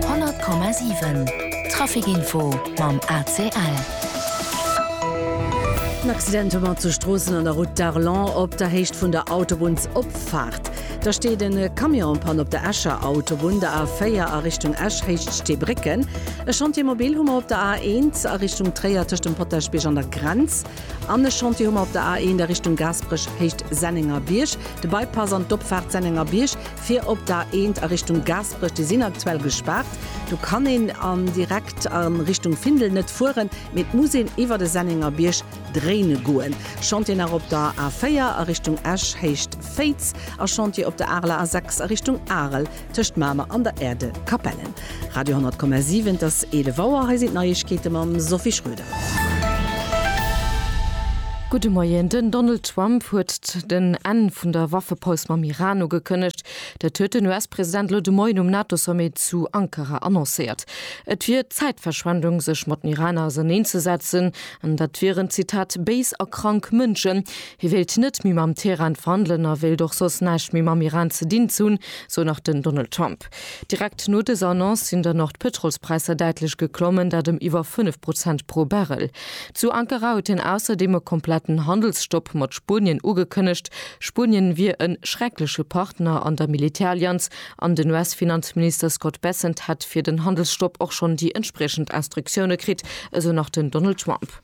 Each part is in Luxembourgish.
100,7 Traficinfo mam ACL. En Accident hu mer zu Stroossen an der Route d'Arlon op der Héicht vun der Autobunnsopfaart. Da steet e Camion en panne op der Escher Autobunn, der A4 a Richtung Esch, Héicht Steebrécken. E Chantier mobil hu mer op der A1 a Richtung Tréier tëscht dem Potaschbierg an der Grenz. An e Chantier hu mer op der A1 a Richtung Gaasperech, Héicht Sennengerbierg, de Bypass an d'Opfaart Sennengerbierg. Fir op der A1 a Richtung Gaasperech, déi sinn aktuell gespaart. Do kann een an direkt a Richtung Findel net fueren, mee et muss een iwwert e Sennengerbierg dréine goen. Chantier nach op der A4 a Richtung Esch Héicht Féiz a Chantier op der Areler A6 a Richtung Arel tëscht Mamer an der Aire de Capellen. Radio 10,7 Et ass 11 Auer, hei sinn d'Neiegkeete mam Sophie Schröder. Gudde Moien. Den Donald Trump huet den Enn vun der Waffepaus mam Iran ugekënnegt. Dat huet den US-President elo de Moien um NATO-Sommet zu Ankara annoncéiert. Et wier Zäitverschwendung, sech mat den Iraner auserneen ze setzen, an dat wieren, Zitat, béis a krank Mënschen. Hie wéilt net méi mam Teheran verhandelen a wéilt och soss näischt méi mam Iran ze dinn ze hunn, sou nach den Donald Trump. Direkt no dëser Annonce sinn dann och d'Pëtrolspräisser däitlech geklommen, dat ëm iwwer 5 Prozent pro Barrel. Zu Ankara huet hien ausserdeem e kompletten Handelsstopp mat Spuenien ugekënnegt. Spuenien wier e schreckleche Partner an der Militärallianz an den US-Finanzminister Scott Bessent hätt fir den Handelsstopp och schonn déi entspriechend Instruktioune kritt, esou nach den Donald Trump.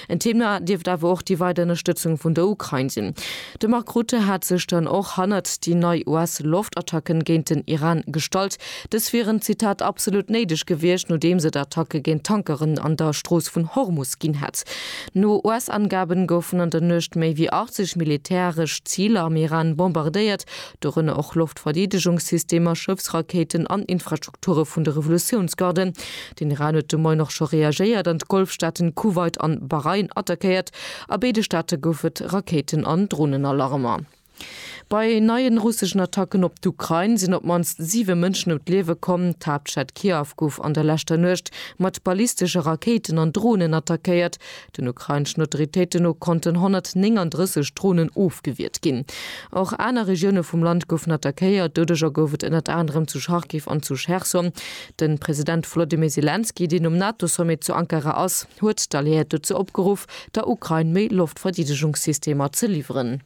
En Thema dierft awer och déi weider Ënnerstëtzung vun der Ukrain sinn. De Mark Rutte hat sech dann och hannert déi nei US-Loftattacken géint den Iran gestallt. Dës wieren, Zitat, absolut néideg gewiescht, nodeems et Attacke géint Tankeren an der Strooss vun Hormus ginn hätt. No US-Angaben goufen an der Nuecht méi wéi 80 militäresch Ziler am Iran bombardéiert, dorënner och Loftverdeedegungssystemer, Schëffsrakéiten an Infrastrukture vun de Revolutiounsgarden. Den Iran huet de Moien och scho reagéiert an d'Golfstaaten Kuwait an Bahrain attackéiert. A béide Staate gouf et Rakéiten an Dronenalarmer. Bei neien russeschen Attacken op d'Ukrain sinn op d'mannst 7 Mënschen ëm d'Liewe komm. D'Haaptstad Kiew gouf an der leschter Nuecht mat ballistesche Rakéiten an Dronen attackéiert. Den ukraineschen Autoritéite no konnten 139 Dronen ofgewiert ginn. Och aner Regioune vum Land goufen attackéiert. Doudeger gouf et ënnert anerem zu Charkiw an zu Cherson. De President Wolodymyr Selenskyj, deen um NATO-Sommet zu Ankara ass, huet d'Alliéiert dozou opgeruff, der Ukrain méi Loftverdeedegungssystemer ze liwweren.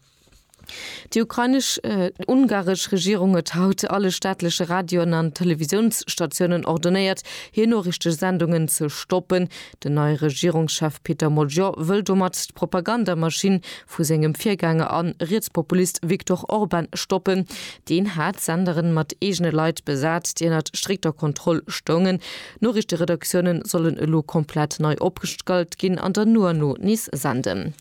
Déi ukrainesch an ungaresch Regierung huet haut alle staatleche Radioen an Televisiounsstatiounen ordonéiert, hir Noriichtesendungen ze stoppen. Den neie Regierungschef Peter Mojor wëll domat d'Propagandamaschinn vu sengem Virgänger an Rietspopulist Viktor Orban stoppen. Deen hat d'Senderen mat eegene Leit besat, déi ënnert strikter Kontroll stoungen. Noriichteredaktiounen sollen elo komplett nei opgestallt ginn an dann no an no nees senden.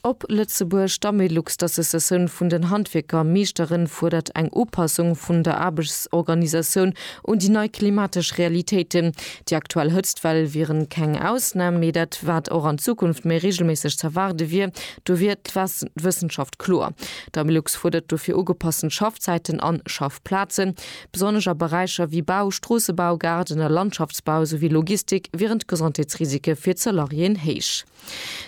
Op Lëtzebuerg, D'Amelux, d'Associatioun vun den Handwierker a Meeschteren, fuerdert eng Upassung vun der Aarbechtsorganisatioun un déi nei klimatesch Realitéiten. Déi aktuell Hëtztwell wiere keng Ausnam, mee dat, wat och an Zukunft méi reegelméisseg z'erwaarde wier. Do wier d'Wëssenschaft kloer. D'Amelux fuerdert dofir ugepassen Schaffzäiten an Schaffplazen. Besonnesch a Beräicher wéi Bau, Stroossebau, Gaarden a Landschaftsbau, souwéi Logistik wieren d'Gesondheetsrisike fir d'Salariéen héich.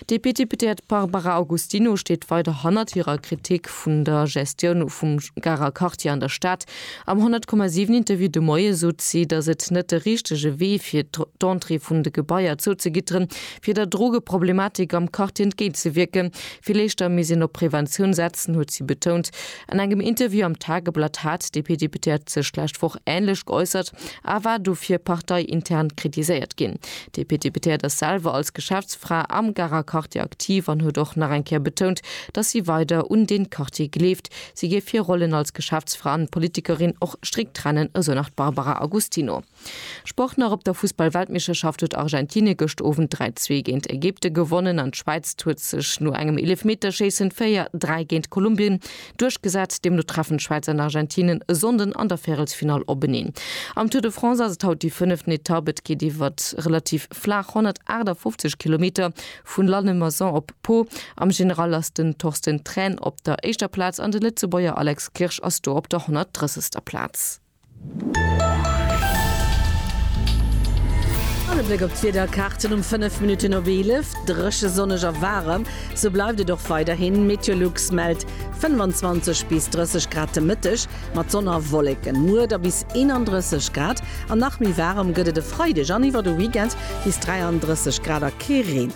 D'DP-Deputéiert Barbara Augustino steet weider hannert hirer Kritik vun der Gestioun vum Garer Quartier an der Stad. Am 100,7 Interview de Moie sot si, datt et net de richtege Wee fir d'Entrée vun de Gebaier zouzegitteren, fir der Drogeproblematik am Quartier entgéint ze wierken. Vill éischter misst een op Preventioun setzen, huet si betount. An engem Interview am Tageblatt hat d'DP-Deputéiert sech d'lescht Woch änlech geäussert a war dofir parteiintern kritiséiert ginn. D'DP-Deputéiert ass selwer als Geschäftsfra am Garer Quartier aktiv an huet och nach eng Kéier betount, datt si weider un dee Quartier gleeft. Si géif hir Rollen als Geschäftsfra an Politikerin och strikt trennen, esou nach d'Barbara Agustino. Sport nach, Op der Fussball-Weltmeeschterschaft huet Argentinien gëscht Owend 3, 2 géint Ägypten gewonnen an d'Schwäiz huet sech no engem Eelefmeterschéissen 4, 3 géint Kolumbien Duerchgesat. Deemno treffen d'Schwäiz an Argentinen e Sonnden an der Värelsfinall openeen. Am Tour de France ass et haut déi fënneften Etapp. Et geet iwwer relativ flaach 158 Kilometer vun Lannemezan op Pau. Am General ass den Torsten Thrän op der éischter Plaz an de Lëtzebuerger Alex Kirsch ass do op der 130. Plaz. An e Bléck op d'Wiederkaarten um 5 Minutten op 11, Dréche, sonneg a waarem, sou bleift et och weiderhin. Meteolux mellt 25 bis 30 Grad de Mëtteg, mat Sonn a Wolleken. Muer da bis 31 Grad an nach méi waarem gëtt et e Freideg an iwwer de Weekend, bis 33 Grad a kee Reen.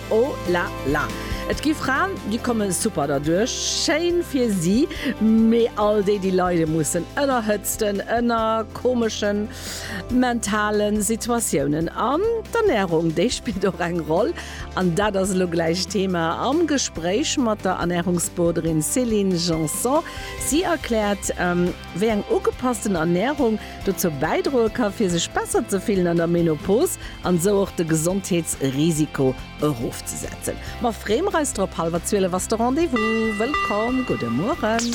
Oh la la. Et gi Fraen, déi komme super derduerch. Schéin fir si. Mee all déi, déi leide mussen ënner Hëtzten, ënner komeschen mentale Situatiounen. An d'Ernärung, déi spillt och eng Roll. An dat ass elo gläich Thema am Gespréich mat der Ernärungsboarderin Céline Janson. Si erkläert, Wéi eng ugepassten Ernärung dozou bäidroe ka fir sech besser ze fillen an der Menopos an esou och de Gesondheetsrisiko erofzesetzen. Ma freemer eis drop, Hallwer 12 ass de Rendez-vous. Wëllkomm, gudde Mueren.